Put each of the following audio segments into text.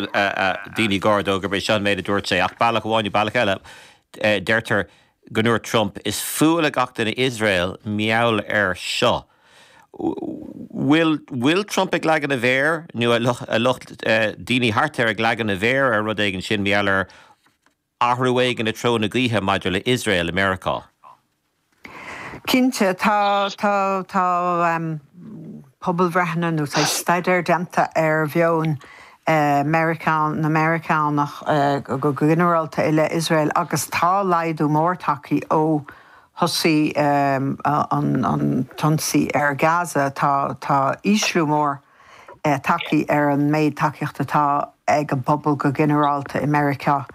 daoine gar dó gurb é seo an méid a dúirt sé, ach bealach amháin nó bealach eile, deirtear go ndúirt Trump, Is fuath le gach duine Iosrael, meall ar seo. Bhfuil bhfuil Trump ag leagan a mhéar, nó an lucht, daoine thart air ag leagan a mhéar ar rud éigin, sin meall air. Athrú éigin i dtreo na gaoithe maidir le Iosrael i Meiriceá. Cinnte, tá pobalbhreitheanna nó tá staidéir déanta ar mheon na Meiriceánach go ginearálta i leith Iosrael agus tá laghdú mór tagtha ó thosaigh an t-ionsaí ar Gaza. Tá ísliú mór. tagtha ar an méid tacaíocht atá ag an bpobal go ginearálta i Meiriceá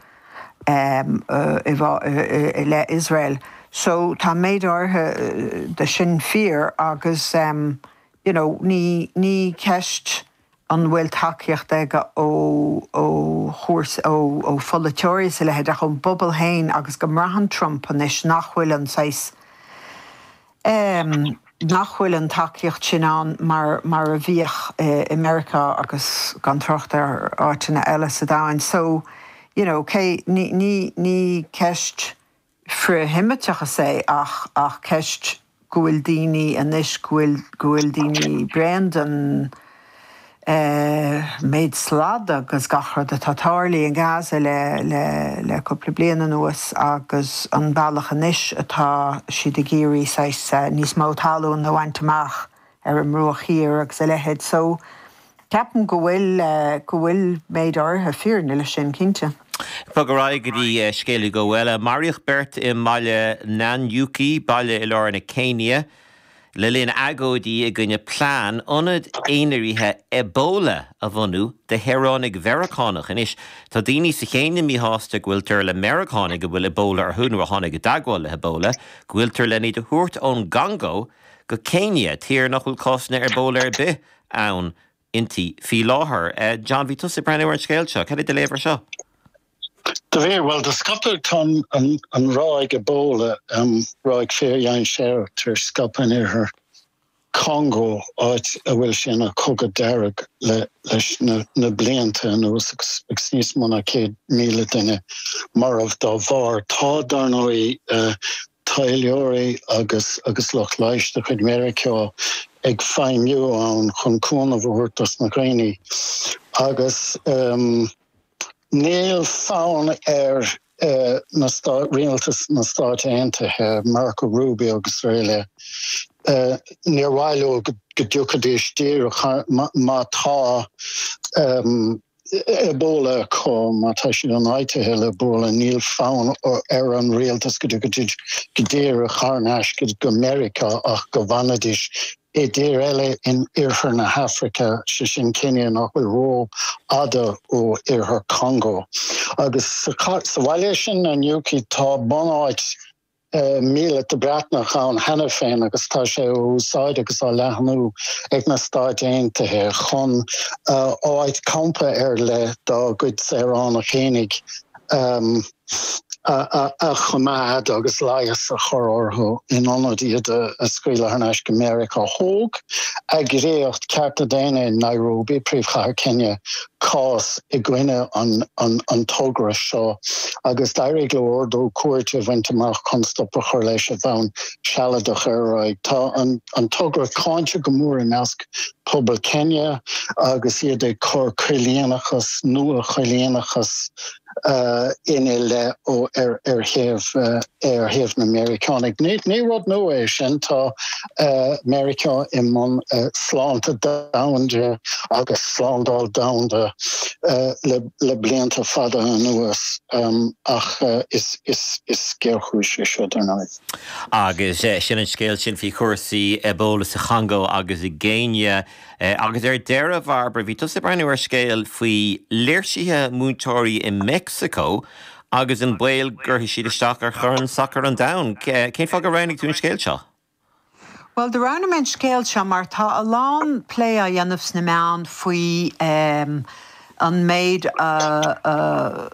i leith Iosrael. So tá méid áirithe de sin fíor agus you know ní ceist an bhfuil tacaíocht aige ó chúrsaí, ó pholaiteoirí is a leithéid ach ón bpobal féin agus go mbraitheann Trump anois nach bhfuil an saghas, em, nach bhfuil an tacaíocht sin ann mar mar a bhíodh i Meiriceá agus gan trácht ar áiteanna eile sa domhain. So, you know, cé, ní, ní, ní ceist frith-Sheimíteachas é ach, ach ceist go bhfuil daoine anois, go bhfuil, go bhfuil daoine bréan den. méid slad agus gach rud atá tarlaithe i nGaza le le cúpla bliain anuas agus an bealach anois atá siad ag iarraidh saghas níos mó talún a bhaint amach ar an mBruach Thiar agus a leithéid so ceapaim go bhfuil go bhfuil méid áirithe fírinne leis sin cinnte. Bog ar aghaidh go dtí scéal eile go bhfuil. Maraíodh beirt i mbaile Nanyuki, baile i lár na Céinia. le linn agóidí i gcoinne plean ionad aonraithe Ebola a bhunú do shaoránaigh Mheiriceánacha. Anois, tá daoine sa Chéinia míshásta go bhfuiltear le Meiriceánaigh a bhfuil Ebola orthu, nó a tháinig i dteagmháil le hEbola, go bhfuiltear len iad a thabhairt ón gCongó go Céinia, tír nach bhfuil cásanna Ebola ar bith inti faoi láthair. John, bhí tusa ag breathnú ar an scéal seo. Cad é do léamh air seo? Do bhí, bhuel, do scaipeadh, tá an ráig Ebola, ráig fíordhainséarach tar éis scaipeadh in oirthear Congó, áit a bhfuil sé ina chogadh dearg leis na blianta anuas agus níos mó ná 100,000 duine marbh dá bharr. Tá, dar ndóigh, taidhleoirí agus lucht leighis de chuid Mheiriceá ag feidhmiú ann chun cúnamh a thabhairt dos na daoine agus, Níl fonn ar Rialtas na Stáit Aontaithe, Marco Rubio agus araile, níor mhaith leo go dtiocfaidís díreach má tá Ebola acu, má tá siad ionfhabhtaithe le Ebola, níl fonn ar an Rialtas go dtiocfaidís go díreach thar n-ais go Meiriceá ach go bhfanfaidís i dtír eile in iarthar na hAfraice, sé sin Céinia nach bhfuil ró fhada ó iarthar Congo. Agus sa bhaile sin Nanyuki tá bunáit míleata Breatnach ann cheana féin agus tá sé á úsáid agus á leathnú ag na Stáit Aontaithe chun áit campa ar leith dá gcuid saoránach féinig a a choimeád agus leigheas a chur orthu in ionad iad a scaoileadh thar n-ais go Meiriceá. Thóg eagraíocht cearta daonna in Nairobi, príomhchathair Kenya, cás i gcoinne an togra seo agus d'éirigh leo ordú cúirte a bhaint amach chun stop a chur leis ar bhonn sealadach ar aon chaoi. Tá an togra cáinte go mór i measc pobal Kenya agus iad ag cur coilíneachas, nua-choilíneachas, ina leith ó ar thaobh na Meiriceánaigh. Ní rud nua é sin, tá Meiriceá i mbun sláinte domhanda agus slándáil domhanda le blianta fada anuas ach is géarchéim é seo dar ndóigh. Agus sin an scéal sin faoi chúrsaí Ebola sa Chongó agus i gCéinia. Agus ar deireadh, a Bhairbre, bhí tusa ag breathnú ar scéal faoi léirsithe múinteoirí i Meicsiceo agus an baol go gcuirfidh siad isteach ar Chorn Sacair an Domhain. Cén fáth gur roghnaigh tú an scéal seo? Bhuel, do roghnaigh mé an scéal seo mar tá a lán plé á dhéanamh sna meáin faoi an méid a.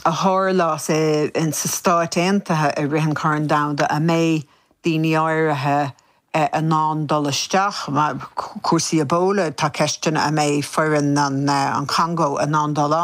a tharlós sna Stáit Aontaithe i rith an Chorn Domhanda a mbeidh daoine áirithe in ann dul isteach, cúrsaí Ebola, tá ceisteanna a mbeidh foireann an Chongó in ann dul